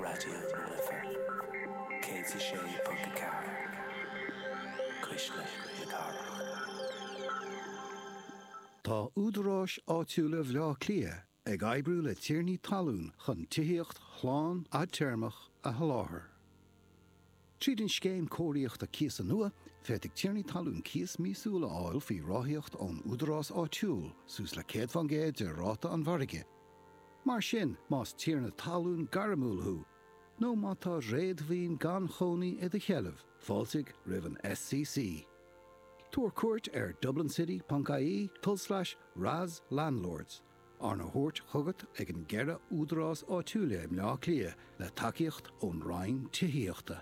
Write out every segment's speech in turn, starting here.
Raidió na Life 106.4, cuisle na cathrach. Tá údaráis áitiúla Bhaile Átha Cliath ag oibriú le tiarnaí talún chun tithíocht shlán fhadtéarmach a sholáthar. Tríd an scéim cóiríochta cíosa nua, féadfaidh tiarnaí talún cíos míosúil a fháil faoi ráthaíocht ón údarás áitiúil, suas le 100 faoin gcéad de ráta an mhargaidh. Mar sin, más tiarna talún gairmiúil thú nó má tá réadmhaoin gan chónaí i do sheilbh, fáiltigh roimh an SCC. Tabhair cuairt ar dublincity.ie, tul slais, RAS Landlords, Arna thabhairt chugat ag an gceithre údarás áitiúil i mBleá Cliath le tacaíocht ón Roinn Tithíochta.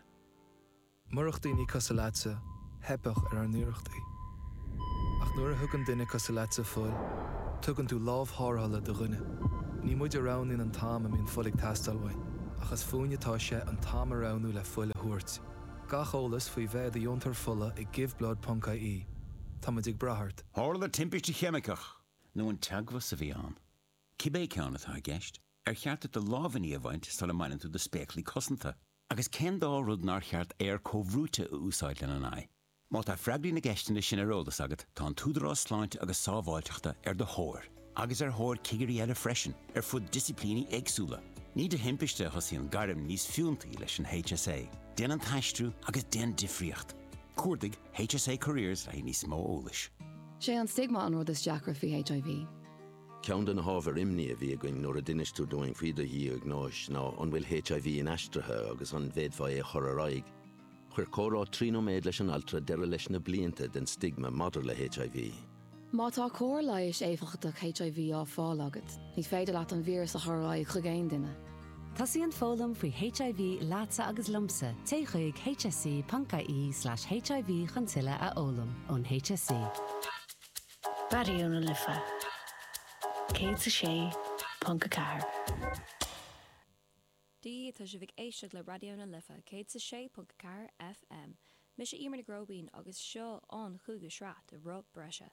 Murach daoine cosúil leatsa, theipfeadh ar ár n-iarrachtaí. Ach nuair a thugann duine cosúil leatsa fuil, tugann tú lámh tharrthála do dhuine. Ní muid a roghnaíonn an t-am a mbíonn fuil ag teastáil uainn, ach is fúinn atá sé an t-am a roghnú le fuil a thabhairt. Gach eolas faoi bheith i do dheontóir fola ag GiveBlood ponc ie Tá muid ag brath ort. Tharla timpiste cheimiceach Nó an teagmhas a bhí ann. Cibé ceann atá i gceist, ar cheart duit do lámhainní a bhaint sula mbaineann tú do spéaclaí cosanta? Agus cén dá rud nár cheart aer comhbhrúite a úsáid lena n-aghaidh? Má tá freagraí na gceisteanna sin ar eolas agat, tá an tÚdarás Sláinte agus Sábháilteachta ar do thóir, agus ar thóir cigirí eile freisin, ar fud disciplíní éagsúla. Ní de thimpiste a thosaíonn gairm níos fiúntaí leis an HSA, déan an t-aistriú agus déan difríocht! Cuardaigh HSA Careers le haghaidh níos mó eolais. Sé an stigma an rud is deacra faoi HIV. Ceann de na hábhair imní a bhí againn nuair a d'inis tú dúinn faoi do dhiagnóis ná an bhfuil HIV inaistrithe agus an bhféadfá é a chur ar aghaidh. Chuir comhrá trí nóiméid leis an altra deireadh leis na blianta den stigma maidir le HIV. Má tá cóir leighis éifeachtach HIV á fáil agat, ní féidir leat an víreas a chur ar aghaidh chuig aon duine. Tosaíonn foghlaim faoi HIV leatsa agus liomsa, téigh chuig hse.ie/hiv chun tuilleadh a fhoghlaim ón HSE. Raidió na Life 106.4. Dia dhaoibh, tá sibh ag éisteacht le Raidió na Life 106.4 FM. Mise Emer Nic Róibín agus seo an cúigiú sraith de Roth Breise.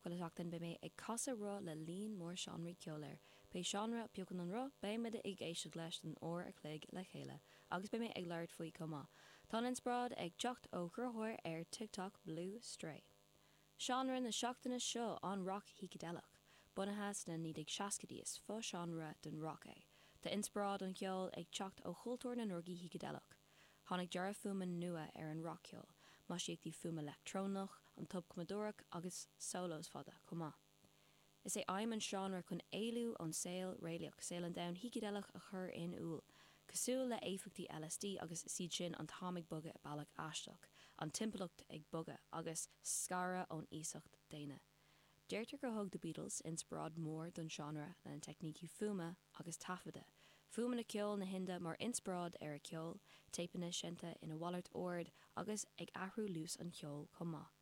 Chuile sheachtain beidh mé ag casadh roth le líon mór seánraí ceoil air. Pé seánra a phiocann an roth, beidh muid ag éisteacht leis don uair a chloig le chéile agus beidh mé ag labhairt faoi chomh maith. Tá an inspioráid ag teacht ó chruthaitheoir ar TikTok, Blue Stray. Seánra na seachtaine seo an rac shícideileach, bunaithe sna 1960idí is fo-seánra den rac é. Tá inspioráid an cheoil ag teacht ó chultúr na ndrugaí shícideileach. Tháinig dearadh fuaime nua ar an rac-cheol, maisíochtaí fuaime leictreonach, an tobchumadóireacht agus solos fada chomh maith. Is é aidhm an seánra chun éalú ón saol réalaíoch, saol an domhain shícideileach a chur in iúl, cosúil le éifeachtaí LSD agus is iad sin an t-am ag bogadh i bealach aisteach, an timpeallacht ag bogadh, agus scaradh ón iasacht daonna. Deirtear gur thug The Beatles inspioráid mhór don seánra lena teicnící fuaime agus taifeadta, fuaimeanna ceoil na hIndia mar inspioráid ar a ceol, téipeanna seinnte ina mhalairt ord agus ag athrú luas an cheoil chomh maith.